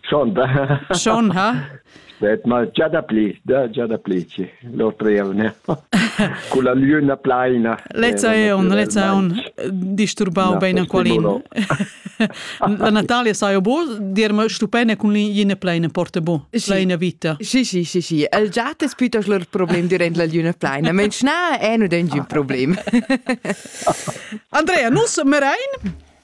Schon da. Schon ha? Det mal già da pli, da già da pli ci. L'altra è una. Con la luna plaina. Lezza è un, lezza è un disturbau bene qualin. La Natalia sa io bo, dirma stupene con l'ina plaina porta bo, plaina vita. Sì, sì, sì, sì. El già te spitas lor problem durant la luna plaina, ma na è un problema. Andrea, nus merein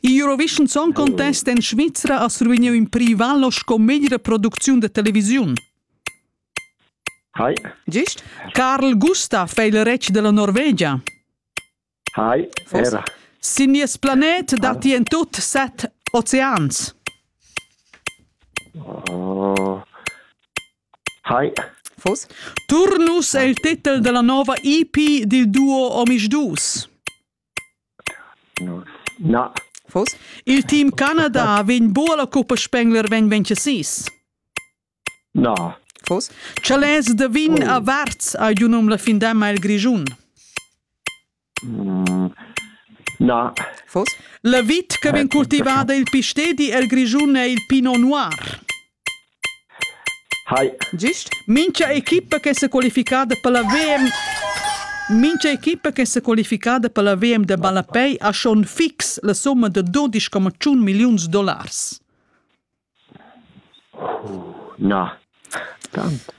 Il Eurovision Song Contest en Svizra ha survegniu in privallo sco meglra producziun da televisiun. Hi. Gist? Carl Gustav è il retg della Norvegia. Hi, era. Sin nies planet datti en tut set oceans. Oh. Hi. Fos? Turnus è il titel della nuova EP dil duo Omisch Dus. Il team Canada vegn buca la cuppa Spengler vegn vencesis. Na. Fos? Chalets da vin a Varz ha giu num la findamma el Grischun. Mm, na. Fos? La vit che vegn cultivada il pistedi el Grischun è il Pinot Noir. Gist mincha equipa che s'ha qualificada per la VM mincha equipa che s'ha qualificada per la VM da ballapei ha schon fix la summa da dudesch coma tschun milliuns dollars. Na, tant.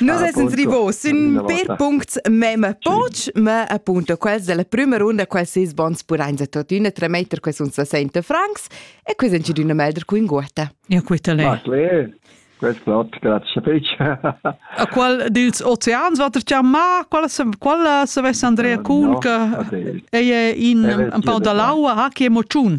Nus essens rivos sün per puncts mem poch, ma appunto quels della prüma runda, quels seis bons pudains a tuottüna tremetter que sun 60 francs e quis in d'üna melder cu in guota. Ja queta le. Marclé, quest plot, grazie fich. A qual dils oceans va ter chiamà? Qual se qual se vess Andrea Kuhn che ei in un pau da l'aua, ha che emoziun.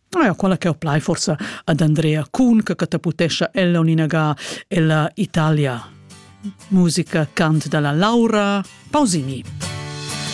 Ja, quella che ho plai forsa ad Andrea Kuhn che catapultescha ella un inaga ella Italia. Musica cant dalla Laura Pausini.